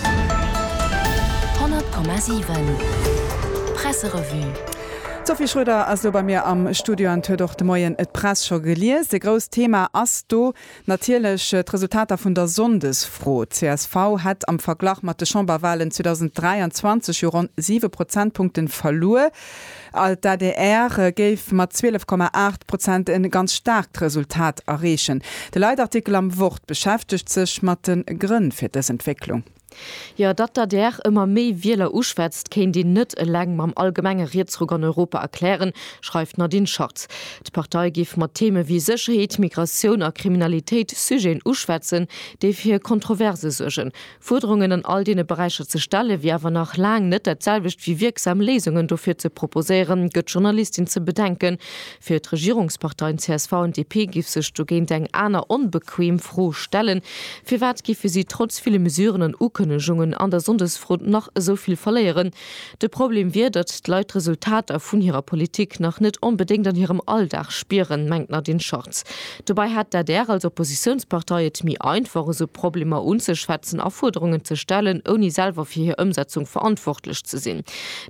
100,7 Presserevue. D'Sophie Schröder ass elo bei mir am Studio an huet och de Moien d'Press scho gelies. E grousst Thema ass do natierlech d'Resultater vun der Sonndesfro. Csv hätt am Verglach mat de Chamberwalen 2023 jo ronn siwe Prozentpunkten verluer. Alt d'ADR géif mat 12 Komma 8 Prozent e ganz staarkt Resultat erreechen. De Leitartikel am Wort beschäftegt sech mat de Grënn fir dës Entwécklung. Jo, datt d'ADR ëmmer méi Wieler uschwätzt, kéint een net eleng mam allgemenge Rietsruck an Europa erklären, schreift d'Nadine Schartz. D'Partei géif mat Theeme wéi Sécherheet, Migratioun a Kriminalitéit Sujeten uschwätzen, déi fir Kontroverse suergen, Fuerderungen an all deene Beräicher ze stellen, wier awer nach laang net dat selwecht wéi wierksam Léisungen dofir ze proposéieren, gëtt d'Journalistin ze bedenken. Fir d'Regierungsparteien csv an DP géif sech dogéint eng aner onbequem Fro stellen, Firwat géife si trotz ville Mesuren an Ukënnegungen an der Sonndesfront nach esou vill verléieren? De Problem wier, datt d'Leit d'Resultater vun hirer Politik nach net onbedéngt an hirem Alldag spieren, mengt d'Nadine Schartz. Dobäi hätt d'ADR als Oppositiounspartei et méi einfach, esou Problemer unzeschwätzen a Fuerderungen ze stellen, ouni selwer fir hir Ëmsetzung verantwortlech ze sinn.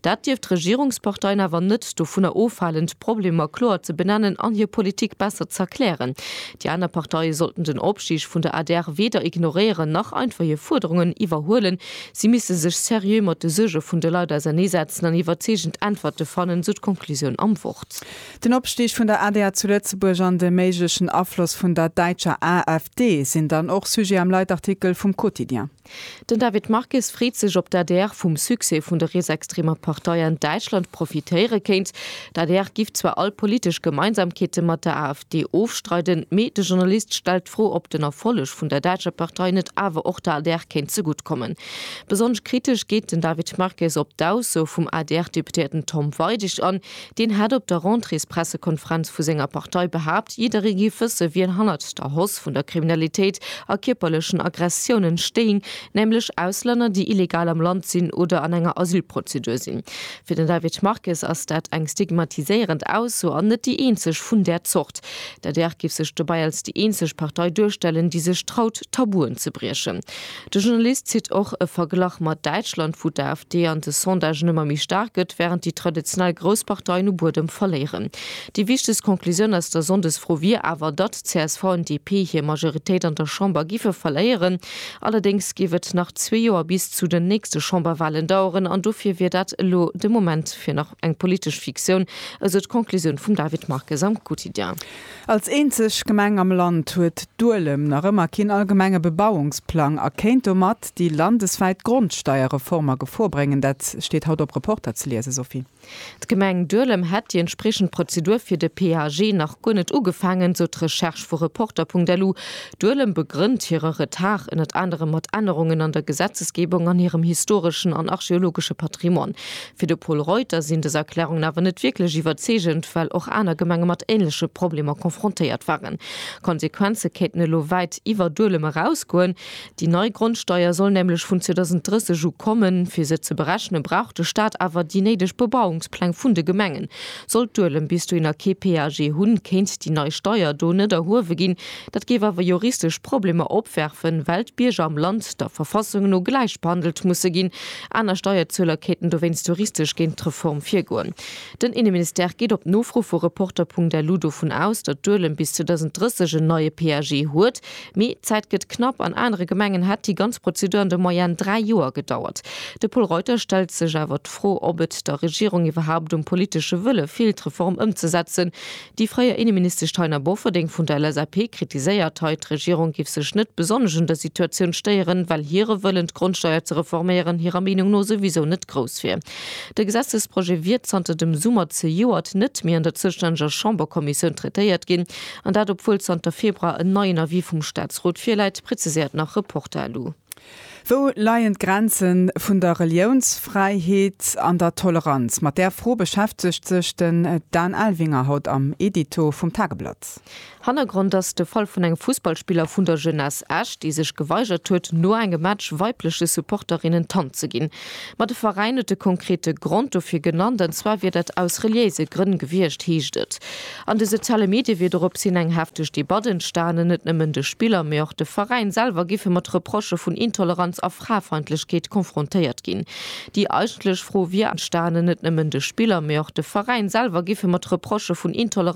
Dat dierft d'Regierungsparteien awer net dovunner ofhalen, d'Problemer kloer ze benennen an hir Politik besser z'erklären. Déi aner Parteie sollten den Opstig vun der adr weder ignoréieren, nach einfach hir Fuerderungen iwwerhuelen, Si misste sech seriö mat de Suerge vun de Leit ausernee setzen an iwwerzeegend Äntwerte fannen, esou d'Konklusioun am Wort. Den Opstig vun der adr zu Lëtzebuerg an de méiglechen Afloss vun der däitscher AfD sinn dann och Sujet am Leitartikel vum Quotidien. Den David Marques freet sech, ob d'ADR vum Succès vun der rietsextremer Partei an Däitschland profitéiere kéint. D'ADR giff zwar all politesch Gemeinsamkeete mat der AfD, Déi ofstreiden, mee de Journalist stellt d'Fro, ob den Erfolleg vun der däitscher Partei net awer och der adr kéint zegutt kommen. Besonnesch kritesch geet den David Marques op d'Ausso vum ADR-Deputéierten Tom Weidig an. Deen hat op der Rentréespressekonferenz vu senger Partei behaapt, jidderee géif wësse wien hannert der Hausse vun der Kriminalitéit a kierperlechen Aggressiounen stéing, nämlech Auslänner, déi illegal am Land sinn oder an enger Asylprozedur sinn. Fir den David Marques ass dat eng stigmatiséierend Ausso an net déi eenzeg vun där Zort. D'adr géif sech dobäi als déi eenzeg Partei duerstellen, déi sech traut, Tabuen ze briechen. De Journalist zitt och e Verglach mat Däitschland, wou d'AfD an de Sondagen ëmmer méi staark gëtt, wärend déi traditionell grouss Parteien u Buedem verléieren. Déi wichtegst Conclusioun aus der Sonndesfro wier awer, datt csv an DP hir Majoritéit an der Chamber giffe verléieren. Allerdéngs géif et nach zwee Joer bis zu den nächste Chamberwahlen daueren an dofir wier dat elo de Moment fir nach eng politesch Fiktioun, esou d'Conclusioun vum David Marques am Quotidien. Als eenzeg Gemeng am Land huet Duelem nach ëmmer keen allgemenge Bebauungsplang a kéint domat déi landeswäit Grondsteierreform a Gefor bréngen. Dat steet haut op Reporter ze liesen, Sophie. D'Gemeng Duelem hätt déi entspriechend Prozedur fir de PAG nach guer net ugefaangen, sou d'Recherche vu Reporter.lu. Duelem begrënnt hire Retard ënnert anerem mat Ännerungen an der Gesetzesgebung an hirem historeschen an archeologesche Patrimoine. Fir de Pol Reuter sinn dës Erklärungen awer net wierklech iwwerzeegend, well och aner Gemenge mat änleche Problemer confrontéiert waren. Konsequenze kéinten elo wäit iwwer Duelem erausgoen. Déi nei Grondsteier soll nämlech vun 2030 u kommen. Fir se ze berechne brauch de Staat awer déi néideg Bebauungspläng vun de Gemengen. Sollt Duelem bis dohin nach kee PAG hunn, kéint déi nei Steier do net erhuewe ginn. Dat géif awer juristesch Problemer opwerfen, well d'Bierger am Land der Verfassung no gläich behandelt musse ginn. Aner Steierzueler kéinten dowéinst juristesch géint d'Reform virgoen. Den Inneministère geet op Nofro vu Reporter.lu dovun aus, datt Duelem bis 2030 en neie PAG huet. Mee d'Zäit gëtt knapp, an anere Gemengen hätt déi ganz Prozedur an der Moyenne dräi Joer gedauert. De Pol Reuter stellt sech awer d'Fro, ob et der Regierung iwwerhaupt um politesche Wëlle feelt d'Reform ëmzesetzen. Déi fréier Innenministesch Taina Bofferding vun der LSAP kritiséiert hei, d'Regierung géif sech net besonnesch un der Situatioun stéieren, well hire Wëllen d'Grondsteier ze reforméieren hirer Meenung no souwisou net grouss wier. De Gesetzesprojet wier zanter dem Summer zejoert net méi an der zoustänneger Chamberkommissioun traitéiert ginn, An dat obwuel zanter Februar en neien Avis vum Staatsrot virläit, preziséiert nach Reporter elo. Wou leien d'Grenze vun der Reliounsfräiheet an der Toleranz? Mat där Fro beschäftegt sech den Dan Elvinger haut am Edito vum Tageblatt. Hannergrond ass de Fall vun engem Fussballspiller vun der Jeunesse Esch, dee sech geweigert huet, no engem Match weibleche Supporterinnen d'Hand ze ginn. Ma de Veräin huet e konkrete Grond dofir genannt, an zwar wier dat aus reliéise Grënn gewiescht, heescht et. An de soziale Medie wier dorops hin eng hefteg Debatt entstanen. Net nëmmen de Spiller, mee och de Veräin selwer géife mat Reprochë vun Intoleranz a Frafeindlechkeet konfrontéiert ginn. Déi eigentlech Fro wier entstanen. Net nëmmen de Spiller, mee och de Veräin selwer géife mat Reprochë vun Intoleranz.